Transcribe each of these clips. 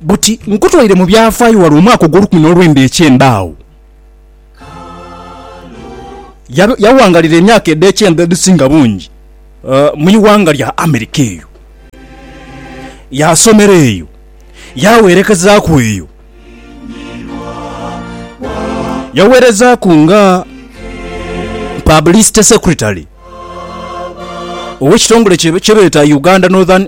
Buti nkutwaire mu byafaayo wali omwaka ogw'olukumi n'olwenda eky'embaawo. Yaghangalira emyaka edh'ekyenda edhisinga bungi mu ighanga lya Amerika eyo. Yaasomera eyo, yaawerekezaaku eyo. Yaweerezaaku nga Publicity Secretary ow'ekitongole kye beeta Uganda Northern.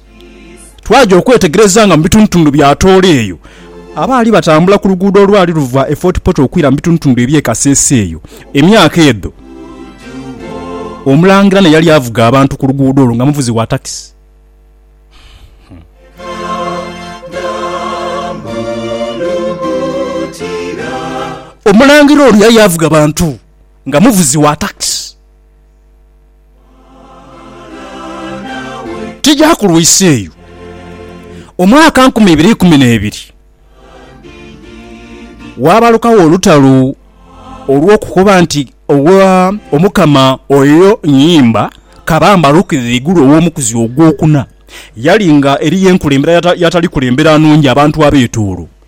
Twaja okwetegereza nga mu bitundutundu bya Tooro eyo abaali batambula ku luguudo olwali luva e Fort Portal okwira mu bitundutundu eby'e Kasese eyo emyaka edho. Omulangira n'eyali avuga abantu ku luguudo olwo nga muvuzi wa takisi. Omulangira ono yali avuga bantu nga muvuzi wa takisi. Tigyakulwisa eyo omwaka nkumi ibiri ikumi n'ebiri, waabalukagho olutalo olw'okukoba nti, Owa Omukama oyo nyimba kabamba alukire ghaigulu ow'omukuzi ogwokuna. Yali nga eriyo enkulembera y'atali kulembera nungi abantu abeetoolo.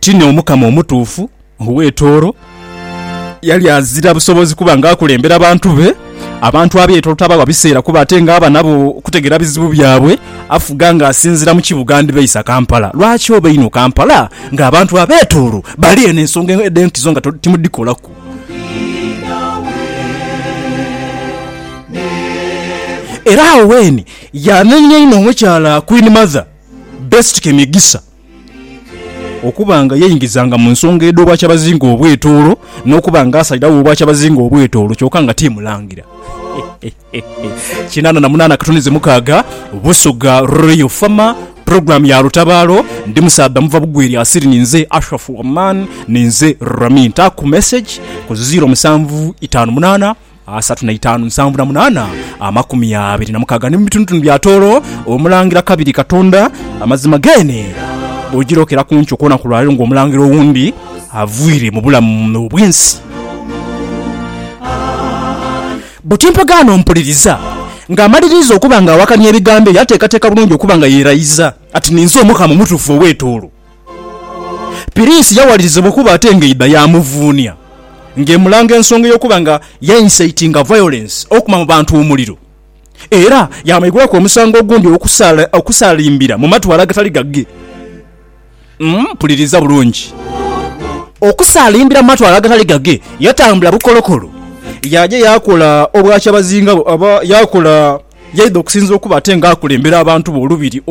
Ti n'Omukama omutuufu ow'etooro yali azira busobozi kuba ng'akulembera bantu be. Abantu ab'etooro tabawa biseera kuba ate ng'aba nabo okutegeera bizibu byabwe. Afuga ng'asinziira mu kibuga ndibeisa Kampala. Lwaki oba einho Kampala ng'abantu ab'etooro bali eno ensonga edh'enkizo nga timudhikolaku? Era awo Wayne yanenya inho omukyala Queen Mother Best Kemigisa. Okuba nga yeingizanga mu nsonga edh'Obwakyabazinga obw'etoolo n'okuba nga asalirawo Obwakyabazinga obw'etoolo kyoka nga ti Mulangira. Kinaana na munaana katuni ze mukaaga Busoga Royal Farmer Program ya lutabaalo Ndi musaadha muva bugwi erya Siri Ninze Ashraf Oman Ninze Rami Ntaaku Message ku ziiro musanvu itaanu munaana asatu na itaanu nsanvu na munaana amakumi abiri na mukaaga ni mu bitunutunu bya tooro omulangira kabiri katonda amazima geene bwojirokera ku nkyo kwona ku lwaleero nga omulangira owundi avwire mu bulamu obwensi buti mpagaano mpuliriza nga amaliriiza okuba nga awakanya ebigambo ebyo ateekateeka bulungi okuba nga yerayiza ati ninze omukama omutuufu owetooro. Piriisi yawalirizibwa okuba ate ng'eidha yaamuvuunia ng'emulanga ensonga ey'okuba nga yainsaitinga vayolensi okuma mu bantu omuliro era yaamwigulaku omusango ogundi okusalimbira mu matwale agatali gage. Mpuliriza bulungi. Okusalimbira mu matwale agatali gage, yatambula bukolokolo yaaja yaakola obwakyabazinga, yaakola. Yaidha okusinza okuba ate nga akulembera abantu be olubiri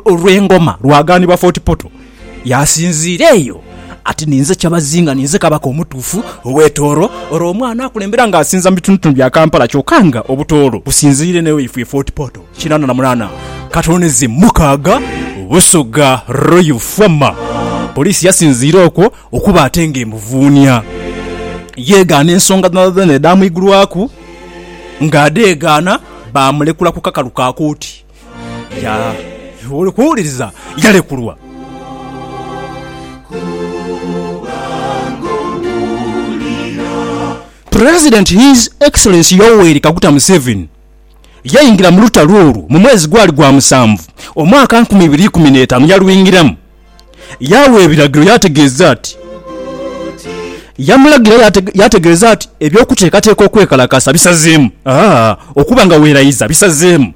olw'engoma lwagaanibwa Fort Portal. Yaasinziira eyo ati, Ninze Kyabazinga, ninze Kabaka omutuufu ow'e Tooro. Olwo omwana akulembera nga asinza mu bitundutundu bya Kampala kyoka nga Obutooro businziire eno ewaifwe e Fort Portal. Kinaana na munaana ka tone ze mukaaga Busoga Royal Former. Poliisi yasinziira okwo okuba ate nga emuvuunia. Yeegaana ensonga dhonadhona edhaamuigulwaku. ng'adheegaana baamulekula ku kakalu ka kooti. Ya, oli kuwuliriza? Yalekulwa. President His Excellency Yoweri Kaguta Museveni yaingira mu lutalo olwo mu mwezi gwali gwa musanvu omwaka nkumi ibiri ikumi n'etaanu yalwingiramu. Yaagha ebiragiro yaategeeza ati, Yamulagira yaategeeza ati, Eby'okuteekateeka okwekalakasa bisazeemu, okuba nga weeraiza bisazeemu.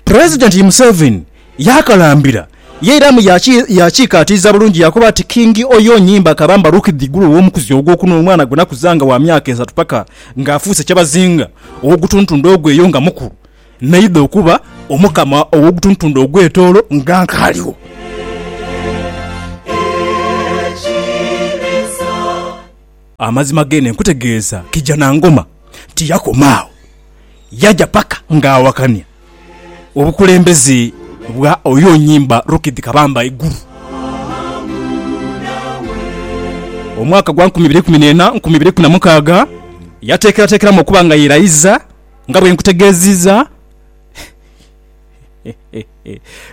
Pulezidenti Museveni yaakalambira Yeiramu yaakiikaatiiza bulungi yaakoba ati, King oyo onyimba akaba mbaluukidha igulu ow'omukuzi ogwokuna omwana gwe nakuzanga wa myaka esatu paka ng'afuuse kyebazinga ow'ogutuntundo ogweyo nga mukulu. Naidha okuba Omukama ow'Ogutuntundo ogw'Etoolo nga nkaaliwo. Amazima geene nkutegeeza Kijanangoma tiyakoma agho, yaja paka ng'awakania obukulembeze bwa oyo onyimba Rukidhi Kabamba eigulu. Omwaka gwa nkumi ibiri ikumi n'ena, nkumi ibiri ikumi na mukaaga, yateekerateekeramu okuba nga yeerayiza. nga bwe nkutegeeziiza.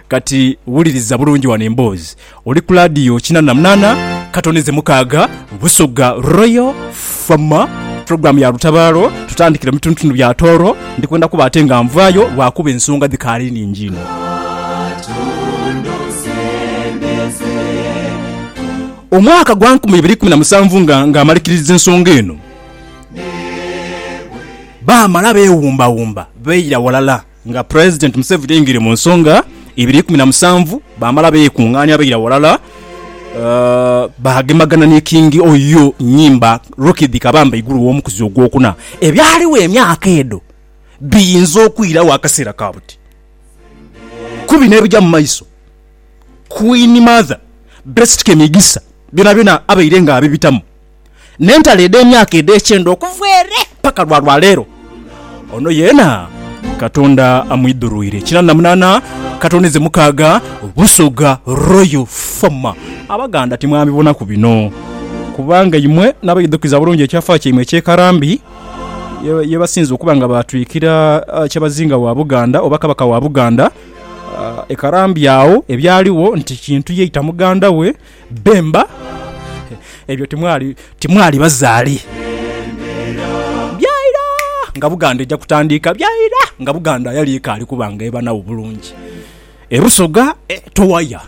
Kati wuliriza bulungi wano emboozi. Oli ku laadiyo kinaana na munaana, ka tone ze mukaaga, Busoga Royal Fama, pulogulaamu ya Lutabaalo. Tutandikire mu bitundutundu bya Tooro. Ndi kwenda kuba ate nga nvaayo lwakuba ensonga dhikaali nhingi inho. Omwaka gwa nkumi ibiri ikumi na musanvu nga, nga amalikiririza ensonga eno, Baamala beewumbawumba baira ghalala nga Pulezidenti Museveni aingire mu nsonga ibiri ikumi na musanvu baamala beekungaania baira ghalala baagemagana ni Kingi Oyo Nyimba Rukidi Kabamba Iguru w'omukuzi ogwokuna. Ebyaligho emyaka edho biyinza okwiragho akaseera ka buti ku bino ebija mu maiso. Queen Mother Best Kemigisa byonabyona abaire nga abibitamu n'entalo edh'emyaka edh'ekyenda okuva ere paka lwa lwaleero. Ono yeena Katonda amwidhurwire. Kinaana na munaana katonize mukaaga Busoga Royal Former. Abaganda timwabibonaku bino kubanga imwe n'abaidhukiza bulungi ekyafa kyaimwe eky'ekarambi yebasinze okuba nga baatwikira Kyabazinga wa Buganda oba Kabaka wa Buganda ekarambi agho ebyaligho nti Kintu yaita muganda we Bemba, Ebyo timwali, timwali bazaale. Byaira nga Buganda eja kutandiika, byaira nga Buganda ayali ekaali kuba nga ebanagho bulungi. E Busoga, e Towaya,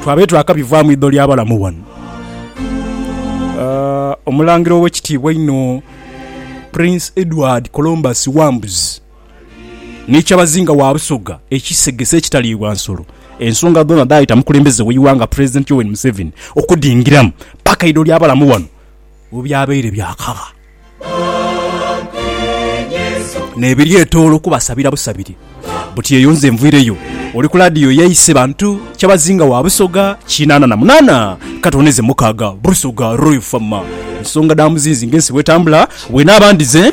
twabaire twakabivaa mu idho lya balamu ghano. Omulangira owekitiibwa einho Prince Edward Colombus Wambuzi. ni kyabazinga wa Busoga ekisegese ekitaliibwa nsolo, ensonga dhoona dhaayita mukulembeze w'eighanga Pulezidenti Yoweri Museveni okudhingiramu paka eidho ly'abalamu bano webyabaire byakagha n'ebiryetoola okubasabira busabire buti eyo nze nviireyo oli ku laadiyo yaise bantu kyabazinga wa Busoga kinaana na munaana katooneze mukaaga Busoga Royal Famma ensonga dha muzinzi ng'ensi bwetambula bwenaaba ndhize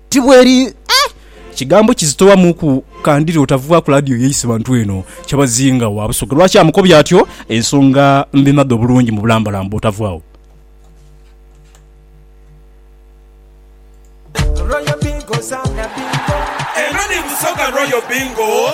Ti bweri eh! Kigambo kizito wamuku kandire otavugha ku ladio yeise bantu eno kyabazinga wa Busoga lwaki amukobya atyo ensonga mbimadha obulungi mu bulambalamba otavughawo. Eno ni Busoga Royal Bingo